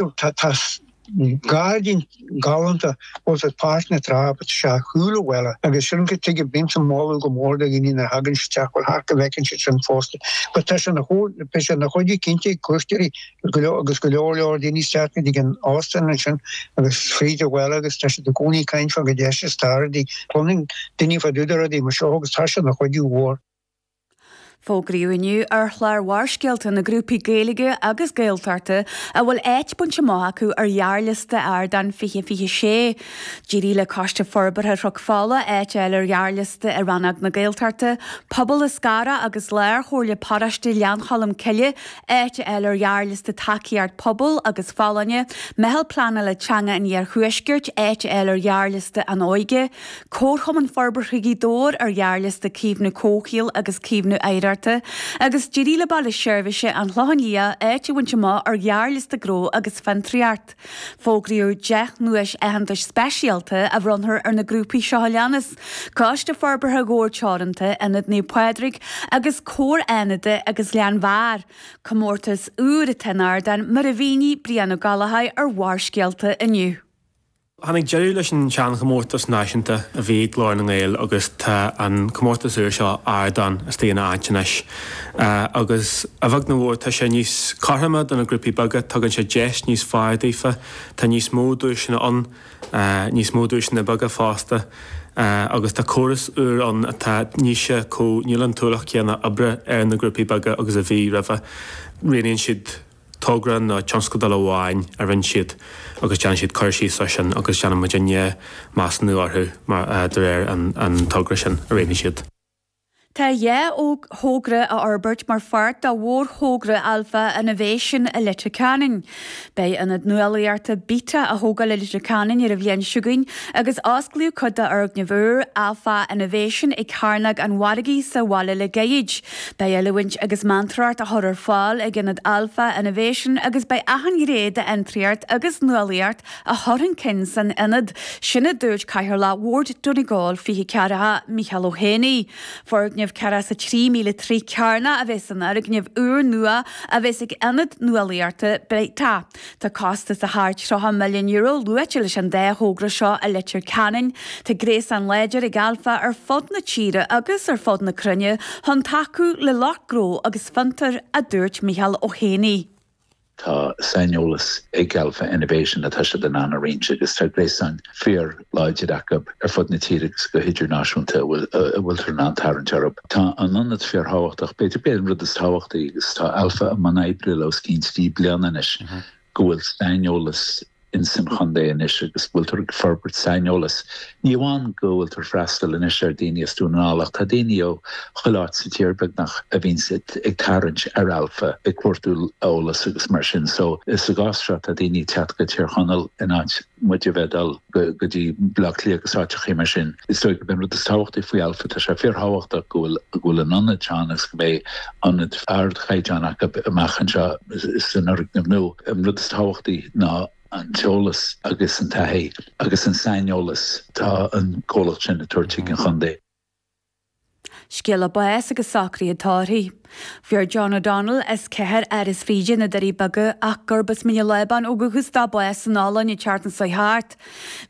Tá gairdín galánta ag Páirc na Trá agus tá sé ar chúl an bhaile agus sin go dtí go mbímse ag moladh go mór do dhaoine nuair a thagann siad isteach, a ghabháil thart go bhfeiceann siad sin fosta. But tá sé na chomh, beidh sé ina chuidiú cinnte ag cuairteoirí go leor agus go leor leor daoine isteach go dtí an óstán ansin agus fríd an bhaile agus tá siad i gcónaí ag caint fá chomh deas is atá rudaí, cluineann daoine fá dtaobh de rudaí mar seo agus tá sé ina chuidiú mhór. Fógraíodh inniu ar chlár Bharrscéalta na grúpaí Gaeilge agus Gaeltachta a bhfuil áit bainte amach acu ar ghearrliosta Ardán 2026. D'éirigh le Coiste Forbartha Chnoc Fola áit a fháil ar ghearrliosta i rannóg na Gaeltachta, Pobal Eascarrach agus Lárchomhairle Paróiste Ghleann Cholm Cille áit a fháil ar ghearrliosta Tacaíocht Pobail agus Folláine, Meitheal Pleanála Teanga an Iarthuaiscirt áit a fháil ar ghearrliosta An Óige, Comharchumann Forbartha Ghaoth Dobhair ar ghearrliosta Caomhnú Comhshaoil agus Caomhnú Oidhreachta agus d'éirigh le Baile Seirbhíse an Chlocháin Liath áit a bhaint amach ar ghearrliosta Gnó agus Fiontraíocht. Fógraíodh deich nduais aitheantais speisialta a bhronnfar ar na grúpaí seo a leanas, Coiste Forbartha Ghabhar Teoranta, Ionad Naomh Pádraig agus Comhar Dhún Lúiche agus Ghleann Bheatha, comórtas úr atá in Ardán mar a mhínigh Brian Ó Gallchóir ar Bharrscéalta inniu. Tháinig deireadh leis an seanchomórtas náisiúnta a bhí ag Glór na nGael agus tá an comórtas úr seo Ardán istigh ina áit anois. Agus, a bheag nó mhór, tá sé níos cothroime do na grúpaí beaga, tugann sé deis níos fearr daofa, tá níos mó duaiseanna ann, níos mó duaiseanna beaga fosta, agus tá córas úr ann atá níos, níl an t-ualach céanna oibre ar na grúpaí beaga agus a bhí roimhe, rianaíonn siad togra nó tionscadal amháin a rinne siad agus déanann siad cur síos ar sin agus déanann muidinne measúnú orthu mar, de réir an, an togra sin a rinne siad. Tá dhá thogra á fhorbairt mar pháirt de mhórthogra Alpha Innovation i Leitir Ceanainn. Beidh Ionad Nuálaíochta Beta á thógáil i Leitir Ceanainn ar an bhliain seo chugainn agus osclaíodh cuid de fhoirgneamh úr, Alpha Innovation, ag Cearnóg an Mhargaidh sa bhaile le gairid. Beidh oiliúint agus meantóireacht á chur ar fáil ag Ionad Alpha Innovation agus beidh achan ghné d'fhiontraíocht agus nuálaíocht á chur chun cinn san ionad sin a dúirt Cathaoirleach Bhord Donegal 2040, Micheál Ó hÉanaigh. Foirgneamh ceathracha is a trí míle troigh cearnach a bheas san fhoirgneamh úr nua a bheas ag Ionad Nuálaíochta Beta. Tá costas de thar €30 milliún luaite leis an dá thogra seo i Leitir Ceanainn. Tá gréasán láidir ag Alpha ar fud na tíre agus ar fud na cruinne chun tacú le lucht gnó agus fiontair, a dúirt Micheál Ó hÉanaigh. Tá saineolas ag Alpha Innovation atá siad in ann a roinnt agus tá gréasán fíor, láidir acu ar fud na tíre agus go hidirnáisiúnta a bhfuiltear in ann tarraingt orthu. Tá an t-ionad fíorthábhachtach, b'fhéidir gurb é an rud is tábhachtaí, agus tá Alpha i mbun oibre leo os cionn trí bliana anois, go bhfuil saineolas ins an chontae anois agus go bhfuiltear ag forbairt saineolais. Ní amháin go bhfuiltear ag freastal anois ar daoine as Dún na nGall ach tá daoine ó chuile áit sa tír, beagnach, a bhíonns ag tarraingt ar Alpha ag cuartú eolais agus mar sin. So, sa gcás seo tá daoine ag teacht go Tír Chonaill in áit. muid a bheith ag dul go dtí Baile Átha Cliath agus áiteachaí mar sin. Is dóigh gurb é an rud is tábhachtaí faoi Alpha, tá sé fíorthábhachtach go bhfuil an t-ionad seo ann agus go mbeidh ionad ardchaighdeáin acu amach anseo san fhoirgneamh nua. An rud is tábhachtaí ná an t-eolas agus an taithí agus an saineolas atá an comhlacht sin ag tabhairt chuig an chontae. Scéala báis agus socruithe tórraimh. Fuair John O'Donnell, as 4 Áras Bhríde na Doirí Beaga ach gurb as Mín an Lábáin ó dhúchas dó bás an lá deireanach seo thart.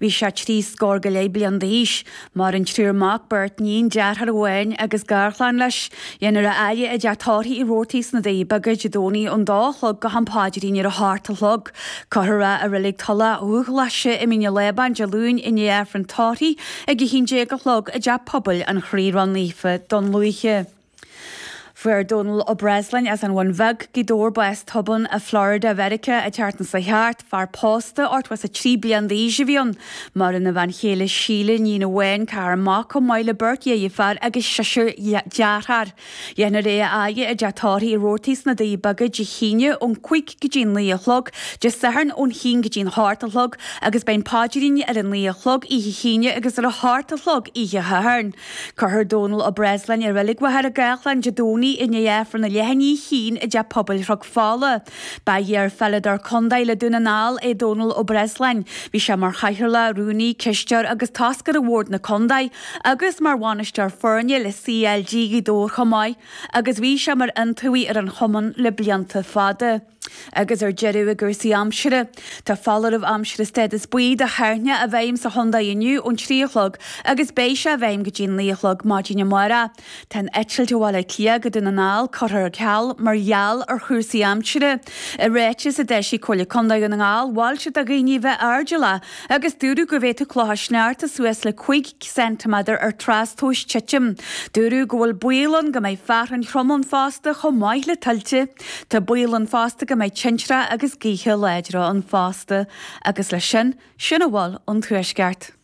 Bhí sé trí scór go leith bliain d'aois. Maireann triúr mac, beirt níon, deartháir amháin agus garchlann leis. Déanfar é a fhaire i dteach tórraimh Roarty's sna Doirí Beaga Dé Domhnaigh ón dá a chlog go ham paidrín ar a hocht a chlog. Cuirfear é i Reilig Theampall Dubhghlaise i Mín an Lábáin Dé Luain i ndiaidh Aifreann Tórraimh ag 11 a chlog i dTeach Pobail an Chroí Ró-Naofa Dún Lúiche. Fuair Dónal Ó Breasláin as an Bhun Bheag, Gaoth Dobhair bás tobann i Florida Mheiriceá an tseachtain seo thart. Fear pósta, 83 bliain d'aois a bhí ann. Maireann a bhean chéile Síle, iníon amháin, ceathrar mac chomh maith le beirt dheirfiúr agus seisear deartháir. Déanfar é a fhaire i dteach tórraimh Roarty's sna Doirí Beaga Dé hAoine ón cúig go dtí an naoi a chlog, Dé Sathairn ón haon go dtí an hocht a chlog agus beidh an paidrín ar an naoi a chlog oíche hAoine agus ar a hocht a chlog oíche Shathairn. Cuirfear Dónal Ó Breasláin i Reilig Mhachaire Gathlán Dé Domhnaigh i ndiaidh Aifreann na leath i ndiaidh a haon i dTeach Pobail Chnoc Fola. Ba iar-pheileadóir contae le Dún na nGall é Dónal Ó Breasláin. Bhí sé mar chathaoirleach, rúnaí, cisteoir agus toscaire Bhord na Contae agus mar bhainisteoir foirne le CLG Ghaoth Dobhair chomh maith agus bhí sé mar iontaobhaí ar an chumann le blianta fada. agus ar deireadh i gcúrsaí aimsire. Tá foláireamh aimsire stádas buí do thoirneach i bhfeidhm sa chontae inniu ón trí a chlog agus beidh sé i bhfeidhm go dtí a naoi a chlog maidin amárach. Tá an eitilt ó Bhaile Átha Cliath go Dún na nGall curtha ar ceal mar gheall ar chúrsaí aimsire. I ráiteas a d'eisigh Comhairle Contae Dhún na nGall mhol siad do dhaoine bheith airdealla agus dúradh go bhféadfadh clocha sneachta suas le 5 ceintiméadar ar trastomhas titim. Dúradh go bhfuil baol ann go mbeidh fearthainn throm ann fosta chomh maith le tuilte. Tá baol ann fosta go mbeidh tintreach agus gaotha láidre ann fosta agus leis sin, sin a bhfuil ón Tuaisceart.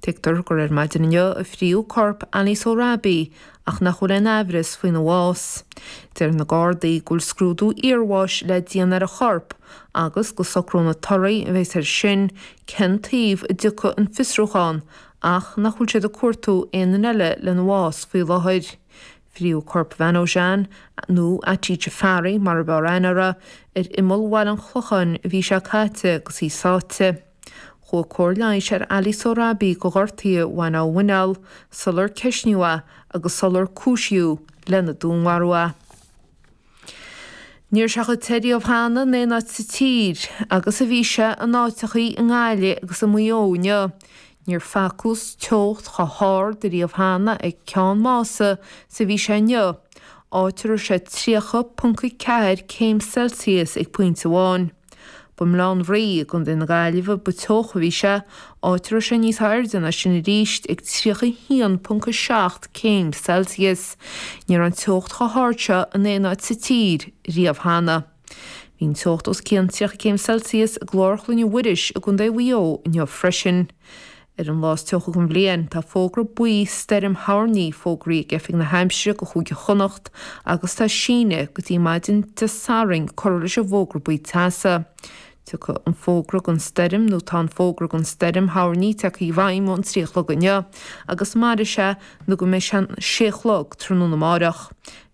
Tuigtear gur ar maidin inniu a fríodh corp Ali Sohrabi ach nach bhfuil aon aimhreas faoina bhás. Deir na Gardaí go bhfuil scrúdú iarbháis le déanamh ar a chorp agus go socróidh na torthaí a bheidh air sin cén taobh a dtiocfaidh an fiosrúchán ach nach bhfuil siad ag cuartú aon duine eile lena bhás faoi láthair. Fríodh corp Mhanojan, nó Atii Jaffari mar ab fhearr aithne uirthi, ar imeall Bhaile an Chlocháin an mhí seo caite agus í sáite. Chuaigh cóir leighis ar Ali Sohrabi do ghortuithe a bhain dá mhuineál sular ceisníodh é agus sular cúisíodh lena dúnmharú é. Ní raibh sé chomh te riamh cheana in aon áit sa tír agus a bhí sé in áiteachaí i nGaillimh agus i Maigh Eo inniu. Níor facthas teocht chomh hard riamh cheana ag Ceann Mása is a bhí sé inniu, áit a raibh sé 30.4 céim Celsius ag pointe amháin. Ba i mBaile Átha an Rí i gContae na Gaillimhe ba teocha a bhí sé, áit a raibh sé níos airde ná sin arís, ag 31.7 céim Celsius. Ní raibh an teocht chomh hard seo in aon áit sa tír riamh cheana. Bhí an teocht os cionn 30 céim Celsius i gClár Chlainne Mhuiris i gContae Mhaigh Eo inniu freisin. Ar an lá is teocha den bhliain, tá fógra buí stoirm thoirní fógraithe ag Oifig na hAimsire do Chúige Chonnacht agus tá síneadh go dtí maidin Dé Sathairn curtha leis an bhfógra buí teasa. Tiocfaidh an fógra don stoirm nó tá an fógra don stoirm thoirní tagtha i bhfeidhm ón trí a chlog inniu agus mairfidh sé nó go mbeidh sé an sé a chlog tráthnóna amárach.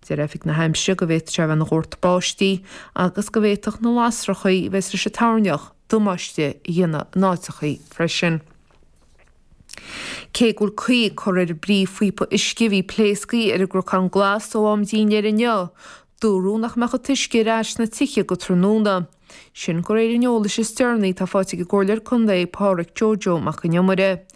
Deir Oifig na hAimsire go bhféadfadh sé a bheith ina dhórtadh báistí agus go bhféadfadh na lasrachaí a bheidh leis an toirneach damáiste a dhéanamh in áiteachaí freisin. Cé go raibh caoi curtha ar an bpríomhphíopa uisce a bhí pléasctha ar an gCnocán Glas ó am dinnéir inniu. Dúradh nach mbeadh an t-uisce ar ais sna tithe go tráthnóna. Sin de réir an eolais is deireanaí atá faighte ag an gComhairleoir Contae Pádraic Joe Joe Mac an Iomaire.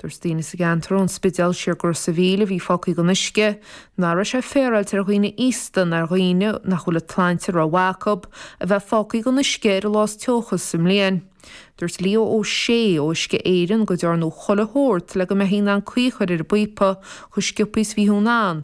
Dúirt daoine sa gceantar ón Spidéal siar go Ros an Mhíl a bhí fágtha gan uisce, nach raibh sé féaráilte ar dhaoine aosta ná ar dhaoine nach bhfuil an tsláinte ró-mhaith acu a bheith fágtha gan uisce ar an lá is teocha sa mbliain. Dúirt Leo Ó Sé ó Uisce Éireann go ndearnadh chuile shórt le go mbeifí in ann caoi a chur ar an bpíopa chomh sciopthaí is a bhí siad in ann,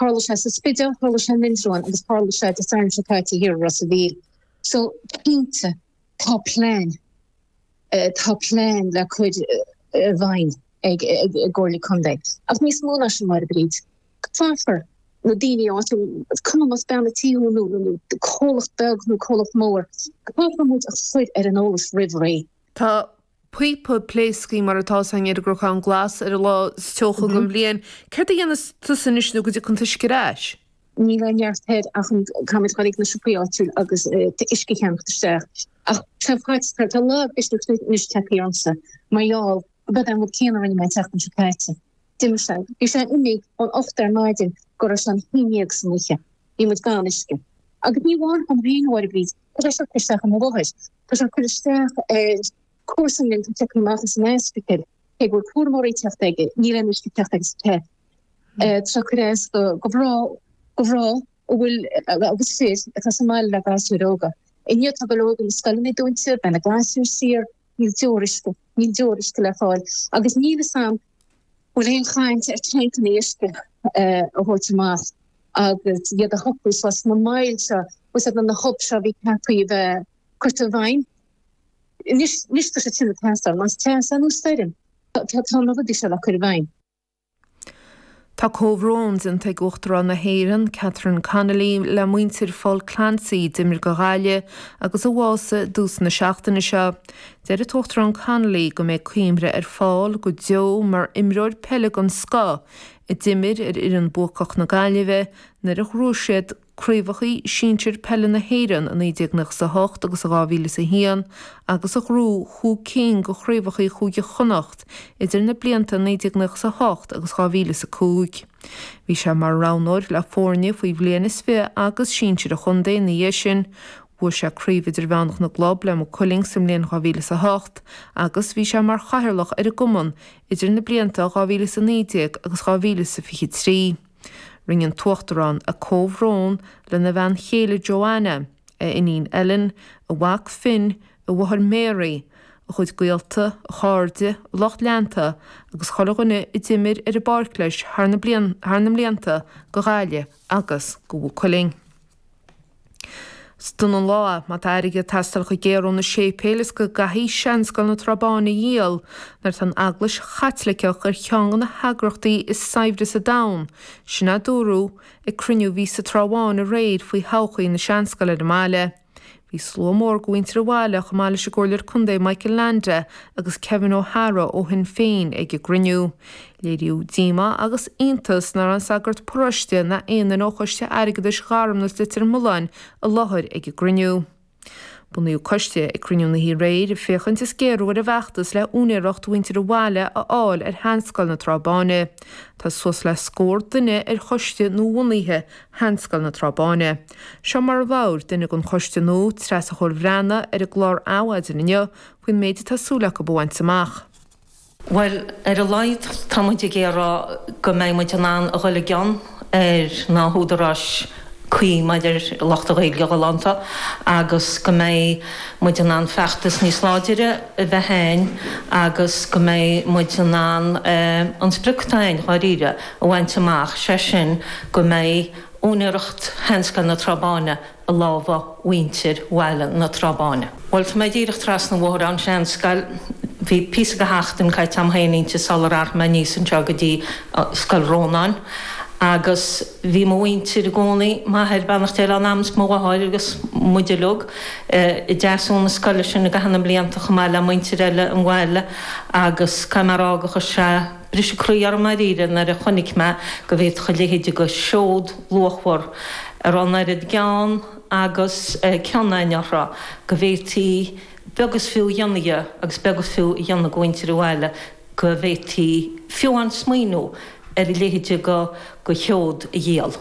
Tharla sé sa Spidéal, tharla sé in Indreabhán agus tharla sé Dé Sathairn seo caite thiar i Ros a' Mhíl. So cinnte tá plean tá plean le cur i bhfeidhm ag ag an gComhairle Contae ach níos mó ná sin Máire Bríd. Caithfear na daoine áitiúil is cuma más bean a' tí thú nó nó comhlacht beag nó comhlacht mór caithfear muid a chur ar an eolas roimh ré. Tá píopa pléasctha mar atá san Iargúrcán Glas ar an lá is teocha den bhliain. Céard a dhéanfas tusa anois nó go dtiocfaidh an t-uisce ar ais? Níl aon neart thoir ach an Camas chuirfidh na siopaí áitiúil agus t-uisce a cheannacht isteach. Ach seo faic, tá an lá breise tugtha anois teipfidh ormsa mar gheall gurb é an rud céanna a rinne mé an tseachtain seo caite. D'imigh sé. Bhí sé imithe ón ocht ar maidin go raibh sé an haon dhéag san oíche. Bhí muid gan uisce. Agus ní amháin an haon uair a bhí Tá sé seo ag cur isteach ar mo mháthair. Tá sé ag cur isteach ar comharsan linn a tháinig amach as an ospidéal. Cé go bhfuil cúramóirí ag teacht aige, níl aon uisce ag teacht aige sa teip. Tá sé seo ag cur as do mhná a bhfuil agus fir atá sa mbaile le gasúir óga. Inniu tá go leor de na scoileanna dúnta, beidh na gasúir saor. Níl tuairisc, níl tuairisc le fáil agus níl fhios a'm bhfuil aon chaint ar canaí uisce a thabhairt amach agus iad a shocrú sna moil seo agus iad na hub seo bhí ceaptha a bheith curta i bhfeidhm. Anois anois atá sé cinnte ag teastáil, más teas é nó stoirm tá tá na rudaí seo le cur i bhfeidhm. Tá comhbhrón déanta ag Uachtarán na hÉireann, Catherine Connolly, le muintir Phaul Clancy a d'imir do Ghaillimh agus a bhásaigh i dtús na seachtaine seo. Deir an tUachtarán Connolly go mbeidh cuimhne ar Phaul go deo mar imreoir peile den scoth a d'imir ar fhoireann bhuacach na Gaillimhe nuair a ghnóthaigh siad craobhacha sinsir peile na hÉireann i 1998 agus i 2001 agus a ghnóthaigh cúig cinn de chraobhacha Chúige Chonnacht idir na blianta 1998 agus 2005. Bhí sé mar roghnóir le foirne faoi bhliain is fiche agus sinsir an chontae ina dhiaidh sin. Bhuaigh sé Craobh Idirmheánach na gClub le Maigh Cuilinn sa mbliain 2008 agus bhí sé mar chathaoirleach ar an gcumann idir na blianta 2019 agus 2023. Roinn an tUachtarán a comhbhrón lena bhean chéile Joanna, a iníon Ellen, a mhac Finn, a mháthair Mary, a chuid gaolta, a chairde, a lucht leanta agus chuile dhuine a d'imir ar an bpáirc leis i gcaitheamh na mblianta do Ghaillimh agus do Mhaigh Cuilinn. Is dona an lá, má tá airgead ag teastáil chomh géar ó na séipéil is go gcaithfidh Seanscoil na Trá Báin a dhíol, nuair atá an Eaglais Chaitliceach ar cheann de na heagrachtaí is saibhre sa domhan, sin a dúradh ag cruinniú a bhí sa Trá Bháin aréir faoi thodhchaí na Seanscoile ar an mbaile. Bhí slua mór de mhuintir an bhaile chomh maith leis an gComhairleoir Contae Michael Leainde agus Kevin O Hara ó Shinn Féin ag an gcruinniú. Léiríodh díomá agus iontas nach raibh an sagart paróiste ná aon duine ó Choiste Airgeadais Gharmna is Leitir Mealláin i láthair ag an gcruinniú. Bunaíodh coiste ag cruinniú na hoíche aréir féachaint le géarú ar an bhfeachtas le úinéireacht mhuintir an bhaile a fháil ar Sheanscoil na Trá Báine. Tá suas le scór duine ar choiste nuabhunaithe Sheanscoil na Trá Báine. Seo mar a labhair duine den choiste nua, Treasa Chóil Bhreathnaigh, ar an gclár Adhmhaidin inniu faoin méid atá súil acu a bhaint amach. Bhuel, ar a laghad tá muid ag iarraidh go mbeidh muid in ann a dhul i gcionn ar na húdaráis cuí maidir le Iontaobhas na Gaillimhe agus go mbeidh muid in ann feachtas níos láidire a bheith a'inn agus go mbeidh muid in ann an sprioc atá a'inn, dháiríre, a bhaint amach, sé sin go mbeidh. úinéireacht sheanscoil na Trá Báine i lámha mhuintir bhaile na Trá Báine. Bhuel, tá mé díreach trasna an bhóthair ann, seanscoil, bhí píosa de sheachtain caite a'm féin inti sular athraigh mé aníos anseo go dtí Scoil Rónáin agus bhí mo mhuintir i gcónaí, m'athair, beannacht Dé lena anam is mo mháthair agus muid uilig, ag freastal na scoile sin i gcaitheamh na mblianta chomh maith le muintir eile an bhaile agus caithfidh mé a rá gur chuir sé Briseadh an croí orm dáiríre nuair a chonaic mé go bhféadfadh a leithéid de sheod luachmhar a raibh an oiread gean agus cion againn uirthi, go bhféadfaí beag is fiú a dhéanamh dhe agus beag is fiú a dhéanamh de mhuintir an bhaile, go bhféadfaí fiú amháin smaoineamh ar a leithéid de sheod a dhíol.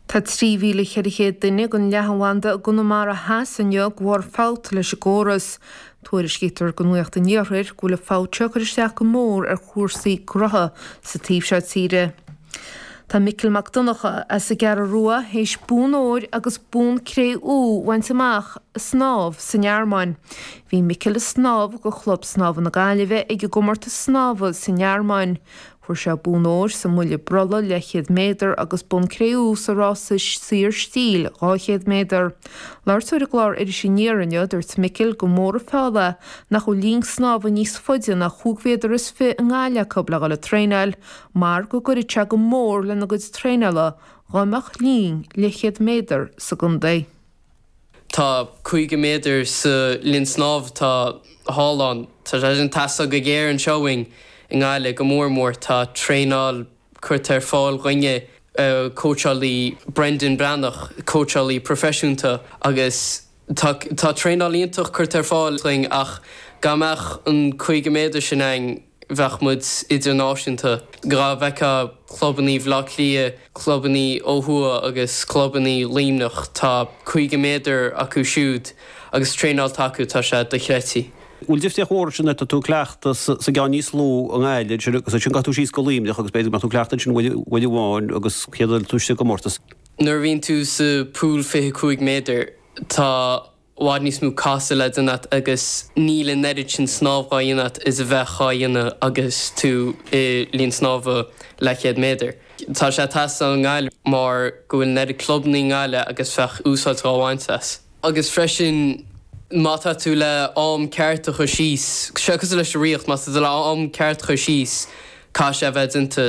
Tá 3,400 duine gan leathanbhanda i gConamara Theas inniu de bharr fabht leis an gcóras. Tuairiscítear do Nuacht an Iarthair go bhfuil an fabht seo ag cur isteach go mór ar chúrsaí gnótha sa taobh seo tíre. Tá Micil Mac Donncha as an gCeathrú Rua théis bonn óir agus bonn cré-umha a bhaint amach ag snámh sa nGearmáin. Bhí Micil ag snámh do Chlub Snámha na Gaillimhe ag an gcomórtas snámha sa nGearmáin. Fuair sé bonn óir sa mbuille brolla leathchéad méadar agus bonn cré-umha sa rása saor stíl 200 méadar. Ag labhairt dó ar an gclár Iris Aniar inniu, dúirt Micil gur mór an feall é nach bhfuil linn snámha níos faide ná chúig mhéadar is fiche i nGaillimh acu le dhul ag traenáil mar go gcuirfeadh sé go mór lena gcuid traenála dá mbeadh linn leathchéad méadar sa gcontae. Tá 50 méadar sa linn snámh atá thall ann. Tá sé sin ag teastáil go géar anseo uainn i nGaillimh go mór mór. Tá traenáil curtha ar fáil dhúinne, cóitseálaí Brendan Breathnach, cóitseálaí proifisiúnta agus tá tá traenáil iontach curtha ar fáil dhúinn ach dhá mbeadh an 50 méadar sin ann bheadh muid idirnáisiúnta. Dhá bhfeictheá clubannaí Bhleá Cliath, clubannaí ó thuaidh agus clubannaí Luimneach, tá 50 méadar acu siúd agus traenáil atá acu, tá sé dochreidte. Bhfuil difríocht mhór ansin má tá tú ag cleachtadh sa gceann níos lú i nGaillimh ansin agus ansin gabhfaidh tú síos go Luimneach agus b'fhéidir go mbeadh tú ag cleachtadh ansin uair amháin agus chéad rud eile tá tú istigh i gcomórtas? Nuair a bhíonn tú sa pool 25 méadar, tá. bhfad níos mó casadh le déanamh agat agus níl an oiread sin snámh dhá dhéanamh agat is a bheadh dhá dhéanamh agus tú i líon snámha leathchéad méadar. Tá sé tais don ngail mar go bhfuil an oiread clubanna i nGaillimh agus bheadh úsáid dhá bhaint as. Agus freisin má tá tú le am ceart a chur síos, sé cosúil leis an Ríocht, má tá tú le am ceart a chur síos caithfidh sé a bheith déanta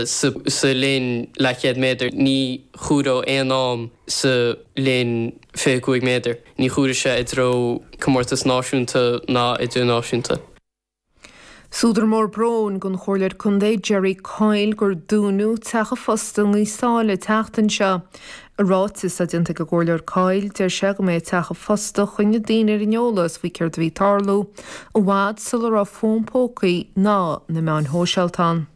sa linn leathchéad méadar, ní chomhairfear aon am sa linn. 25 méadar. Ní chomhairfidh sé i dtreo comórtas náisiúnta ná idirnáisiúnta. Is údar mór bróin don Chomhairleoir Contae Gerry Coyle gur dúnadh teach an phosta i nGaoth Sáile an tseachtain seo. I ráiteas atá déanta ag an gComhairleoir Coyle, deir sé go mba é teach an phosta a choinnigh daoine ar an eolas faoi céard a bhí ag tarlú, i bhfad sula raibh fón pócaí ná na meáin shóisialta ann.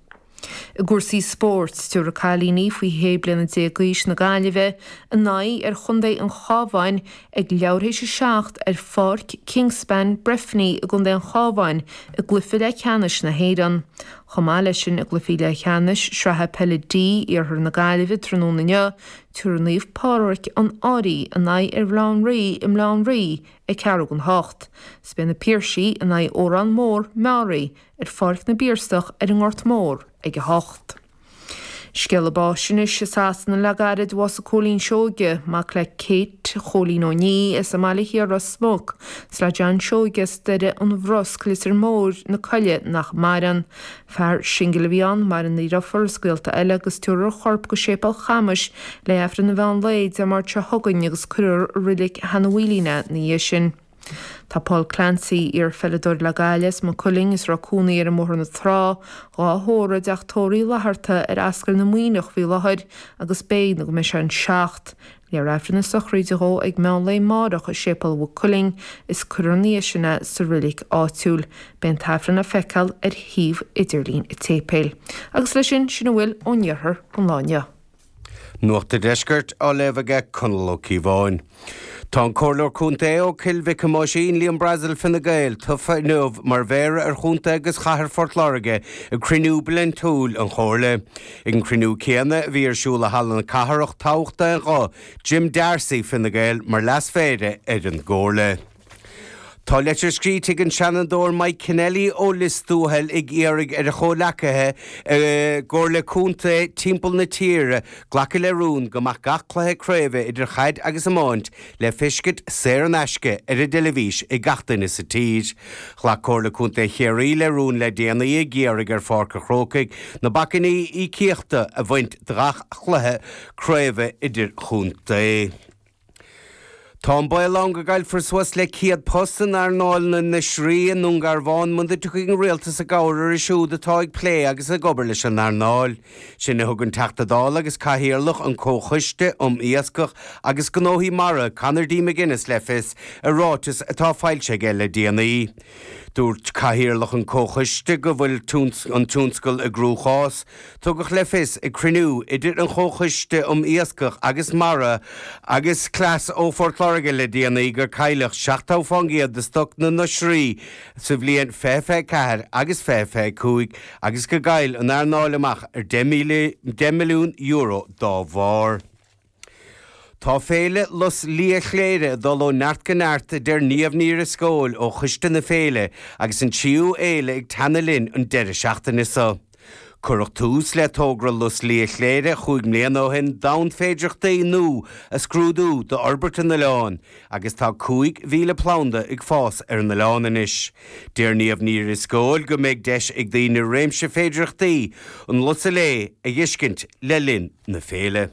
I gcúrsaí spóirt, tiúrfaidh cailíní faoi shé bliana déag d'aois na Gaillimhe a n-aghaidh ar chontae an Chábháin ag leathuair tar éis a seacht ar Pháirc Kingspan, Breffni i gcontae an Chábháin i gcluiche leathcheannais na hÉireann. Chomh maith leis sin i gcluichí leathcheannais sraithe peile D iarthar na Gaillimhe tráthnóna inniu, tiúrfaidh Naomh Pádraig an Fhairche a n-aghaidh ar Rinn Mhaoile i Rinn Mhaoile ag ceathrú chun a hocht. Is beidh na Piarsaigh in aghaidh Órán Mór, Meáraí, ar Pháirc na bPiarsach ar an nGort Mór ag a hocht. Scéala báis anois i Sasana le gairid, bhásaigh Cóilín Seoige, mac le Kate, Chóilín Ó Nia as an mBaile Thiar Ros Muc, is le John Seoige as Doire an Bhrusc, Litir Móir na Coille nach maireann. Fear singil a bhí ann, maireann a dhrifiúr is gaolta eile agus tiúrfar a chorp go Séipéal Chamais le hAifreann an mheán lae, Dé Máirt seo chugainn agus cuirfear i roilig Sheana Mhaoilín é ina dhiaidh sin. Tá Paul Clancy, iarpheileadóir le Gaillimh, is Maigh Cuilinn is Ráth Cúnaí ar an mBóthar na Trá, dhá thórramh i dteach tórraimh Uí Fhlatharta ar Ascaill na Muimhneach faoi láthair agus beidh nó go mbeidh sé an seacht. Léifear aifreann na sochraide dó ag meán lae máireach i Séipéal Mhaigh Cuilinn is cuirfear ina dhiaidh sin é sa roilic áitiúil. Beidh an t-aifreann le feiceáil ar shuíomh idirlín an tséipéil. Agus leis sin, sin a bhfuil ón iarthar don lá inniu. Nuacht an Deiscirt á léamh aige Conall Ó Cíobháin. Tá an Comhairleoir Contae ó Choill Mhic Thomáisín, Liam Brazil Fine Gael tofa inniu mar Mhéara ar Chontae agus Chathair Phort Láirge ag cruinniú bliaintiúil an Chomhairle. Ag an gcruinniú céanna a bhí ar siúl i Halla na Cathrach toghadh d'aon ghuth Jim D'Arcy Fine Gael mar Leas Mhéara ar an gComhairle. Tá leitir scrite ag an Seanadóir Mike Kennelly ó Lios Tuathail ag iarraidh ar a chomhleacaithe i gcomhairlí contae timpeall na tíre glacadh le rún go mbeadh gach cluiche craoibhe idir chaid agus iomáint le feiscint saor in aisce ar an dteilifís ag gach duine sa tír. Ghlac Comhairle Contae Chiarraí le rún le déanaí ag iarraidh ar Pháirc an Chrócaigh na bacainní íocaíochta a bhaint de gach cluiche craoibhe idirchontae. Tá an baol ann go gcaillfear suas le 100 post in earnáil na n-oisrí i nDúngarbhán muna dtiocfadh an Rialtas i gcabhair orthu siúd atá ag plé agus ag obair leis an earnáil sin a thug an Teachta Dála agus Cathaoirleach an Comhchoiste um Iascach agus Gnóthaí Mara, Conor D. McGuinness le fios i ráiteas atá foilsithe aige le déanaí. Dúirt Cathaoirleach an Comhchoiste go bhfuil an tionscal i gcruachás, Tugadh le fios ag cruinniú idir an Chomhchoiste um Iascach agus Mara agus Cleas ó Phort Láirge le déanaí gur cailleadh 70% de stoc na n-oisrí sa bhliain 2024 agus 2025 agus gur chaill an earnáil amach ar €10 milliún dá bharr. Tá Féile Lus Liath Chléire ag dul ó neart go neart a deir Niamh Ní Dhrisceoil ó choiste na féile agus an tríú fhéile ag teannadh linn an deireadh seachtaine seo. Cuireadh tús le togra Lus Liath Chléire chúig bliana ó shin d'fhonn féidireachtaí nua a scrúdú d'fhorbairt an oileáin agus tá 5,000 planda ag fás ar an oileán anois. Deir Niamh Ní Dhrisceoil go mbeidh deis ag daoine réimse féidireachtaí an lusa léith a dh'fheiscint le linn na féile.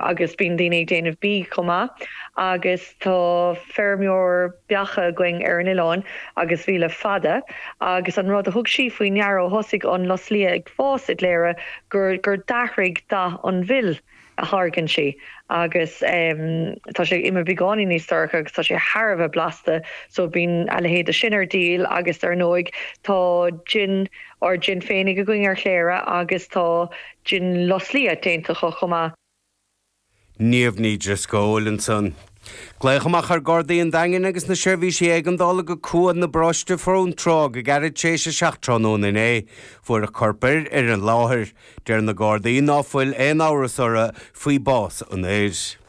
agus bíonn daoine ag déanamh bídh chomh maith agus tá feirmeoir beacha againn ar an oileán agus bhí le fada agus an rud a thug sí faoi ndeara ó thosaigh an lus liath ag fás i gCléire gur gur d'athraigh dath an mhil a tháirgeann sí agus tá sé imithe beagáinín níos dorcha agus tá sé thar a bheith blasta so bíonn a leithéid de sin ar díol agus dar ndóigh tá jin ár jin féinig againn ar Chléire agus tá Jin Lus Liath déanta acu chomh maith. Niamh Ní Dhrisceoil ansan. Glaodh amach ar Ghardaí an Daingin agus na seirbhísí éigeandála go Cuan i bParóiste Fionntrá go gairid tar éis a seacht tráthnóna inné. Fuarthas corp fir ar an láthair. Deir na Gardaí ná fuil aon amhras orthu faoi bhás an fhir.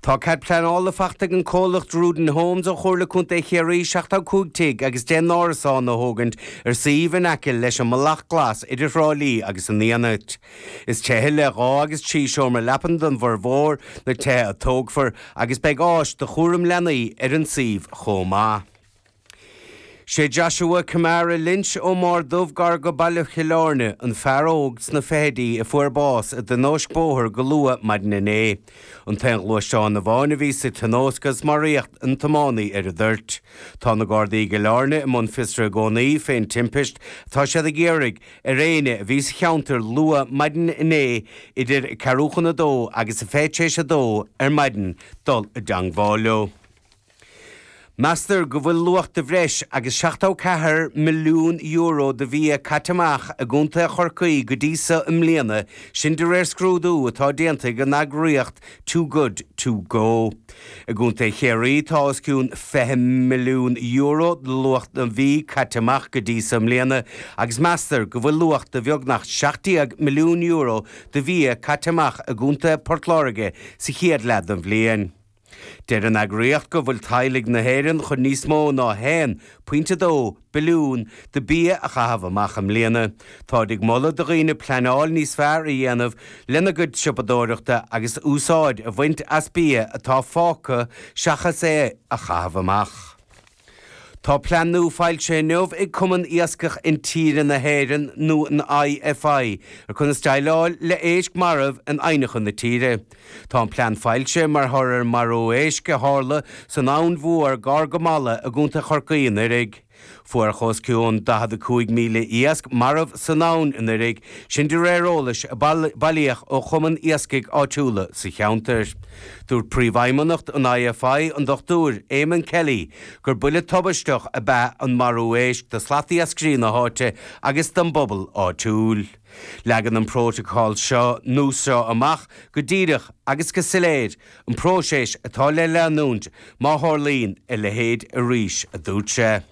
Tá cead pleanála faighte ag an comhlacht Druden Homes ó Chomhairle Contae Chiarraí 75 tigh agus 10 n-árasán a thógaint ar suíomh in aice leis an mBealach Glas idir Thrá Lí agus an Fhianait. Is tithe le dhá agus trí seomra leapan do fhormhór na tithe a thógfar agus beidh áis do chúram leanaí ar an suíomh chomh maith. Sé Joshua Kamara Lynch ó Máir Dubh gar go Baile Chill Áirne an fear óg sna fichidí a fuair bás i dtionóisc bóthair go luath maidin inné. An t-aon ghluaisteán amháin a bhí sa tionóisc agus maraíodh an tiománaí ar an dtoirt. Tá na Gardaí i gCill Áirne i mbun fiosraithe i gcónaí fén timpist. Tá siad ag iarraidh ar éinne a bhí sa cheantar luath maidin inné idir a ceathrú chun a dó agus a fiche tar éis a dó ar maidin dul i dteangmháil leo. Meastar go bhfuil luach de bhreis agus €74 milliún de bhia caite amach i gContae Chorcaí go dtí seo i mbliana, sin de réir scrúdú atá déanta ag an eagraíocht Too Good To Go. I gContae Chiarraí tá os cionn €20 milliún de luach an bhídh caite amach go dtí seo i mbliana agus meastar go bhfuil luach de bheagnach €17 milliún de bhia caite amach i gContae Port Láirge sa chéad leath den bhliain. Deir an eagraíocht go bhfuil teaghlaigh na hÉireann chun níos mó ná 1 pointe 2 billiún de bia a chaitheamh amach i mbliana. Táid ag moladh do dhaoine pleanáil níos fearr a dhéanamh lena gcuid siopadóireachta agus úsáid a bhaint as bia atá fágtha seachas é a chaitheamh amach. Tá plean nua foilsithe inniu ag Cumann Iascach Intíre na hÉireann nó an IFI ar chonas déileáil le héisc marbh in aibhneacha na tíre. Tá an plean foilsithe mar thoradh ar marú éisc a tharla san Abhainn Mhór gar go Mala i gContae Chorcaí anuiridh. Fuaireadh os cionn 45,000 iasc marbh san abhainn anuiridh, sin de réir eolais a bailíodh ó chumann iascaigh áitiúla sa cheantar. Dúirt Príomhfheidhmeannacht an IFI, an Dr Eamonn Kelly, gur buille tubaisteach ab ea an marú éisc do slatiascairí na háite agus don bpobal áitiúil. Leagann an prótacal seo nua seo amach go díreach agus go soiléir, an próiseas atá le leanúint má tharlaíonn a leithéid arís, a dúirt sé.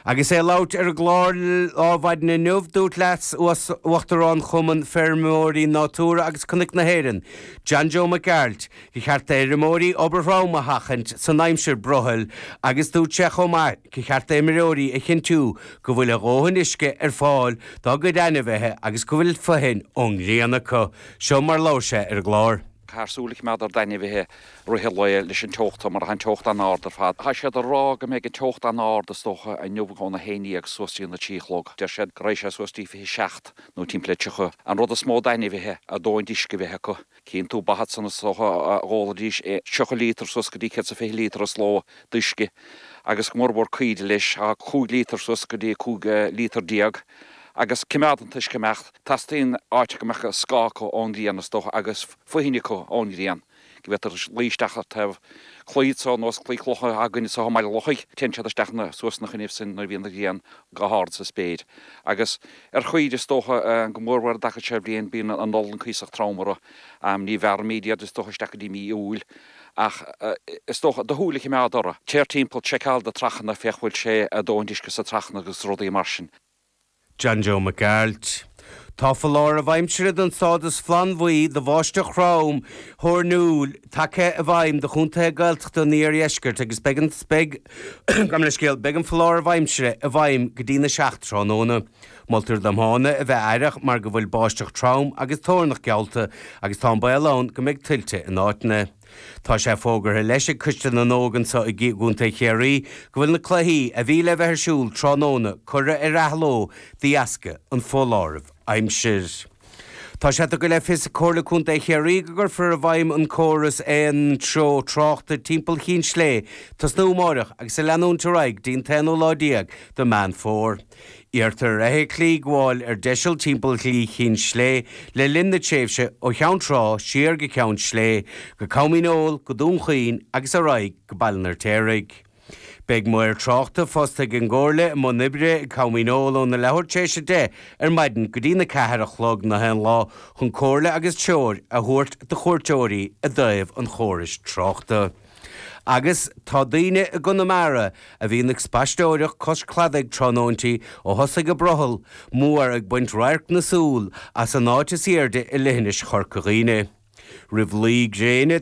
Agus é ag labhairt ar an gclár Adhmhaidin inniu, dúirt Leas Uachtarán Chumann Feirmeoirí Natura agus Cnoic na hÉireann, John Joe Mac Gearailt, gur cheart d'fheirmeoirí obair throm a sheachaint san aimsir brothaill agus dúirt sé chomh maith gur cheart d'fheirmeoirí a chinntiú go bhfuil a dhóthain uisce ar fáil dá gcuid ainmhithe agus go bhfuil fothain ón ngrian acu. Seo mar labhair sé ar an gclár. Do shúil a choimeád ar d'ainmhithe rith an lae leis an teocht seo mar tá an teocht an-ard ar fad. Tá siad ag rá go mbeidh an teocht an-ard is dócha inniu óna haon dhéag suas dtí an 3 a chlog. Deir siad go raghaidh sé suas dtí 27 nó timpeall ar 30. An rud is mó d'ainmhithe a dóthain d'uisce a bheith acu. Cíonn tú ba iad san is dócha d'ólfaidís 30 líotar suas go dtí 120 líotar sa ló d'uisce agus go mór mhór caoirigh leis tá 5 líotar suas go dtí 15 líotar agus coimeád an t-uisce ag imeacht. Teastaíonn áit go mbeadh scáth acu ón ghrian is dócha agus fothain acu ón ghrian. go bhféadfaidís luí isteach ar thaobh claí ar nós claí clocha againn anso i mBaile an Lochaigh téann siad isteach nó suas ina choinnibh sin nuair a bhíonn an ghrian go hard sa spéir agus ar chaoirigh is dócha go mór mhór an dtaca seo bhliain bíonn an olann cuíosach trom orthu am ní bhearraimíd iad is dócha isteach go dtí mí Iúil ach is dócha do shúil a chimeád orthu téir timpeall seiceáil do trachanna féach bhfuil sé a dóthain uisce sa trachanna agus rudaí mar sin. John Joe Mac Gearailt. Tá foláireamh aimsire don stádas flannbhuí do bháisteach throm thoirniúil tagtha i bhfeidhm do chontaetha Gaeltachta an iardheiscirt agus beidh an Gabh mo leith scéal, beidh an foláireamh aimsire i bhfeidhm go dtí'n 7 tráthnóna. Moltar do dhaoine a bheith aireach mar go bhfuil báisteach trom agus toirneach geallta agus tá an baol ann go mbeidh tuilte in áiteanna. Tá sé fógartha leis ag Coiste na nÓg anso i gContae Chiarraí go bhfuil na cluichí a bhí le bheith ar siúl tráthnóna curtha ar athló de dheasca an foláirimh aimsir. Tá sé tugtha le fios ag Comhairle Contae Chiarraí go gcuirfear i bhfeidhm an córas aon treo tráchta timpeall Chinn Sléibhe ag tosnú amáireach agus a leanúint ar aghaidh dtí'n t-aonú lá déag de Meán Fómhair. Iarrtar ar fheithiclí gabháil ar deiseal timpeall Shlí Chinn Sléibhe le linn na tréimhse ó Cheann Trá siar go Ceann Sléibhe, go Com Dhíneol, go Dún Chaoin agus ar aghaidh go Baile an Fheirtéaraigh. Beidh maor tráchta fostaithe ag an gComhairle i mbun oibre i gCom Dhíneol óna leathuair tar éis a deich ar maidin go dtína ceathair a chlog an aon lá chun comhairle agus treoir a thabhairt do chuairteoirí i dtaobh an chórais tráchta. Agus tá daoine i gConamara a bhíonn ag spaisteoireacht cois cladaigh tráthnóintí ó thosaigh an brothall mór ag baint radharc na súl as an áit is aoirde i leithinis Chorca Dhuibhne. Roimh luí gréine,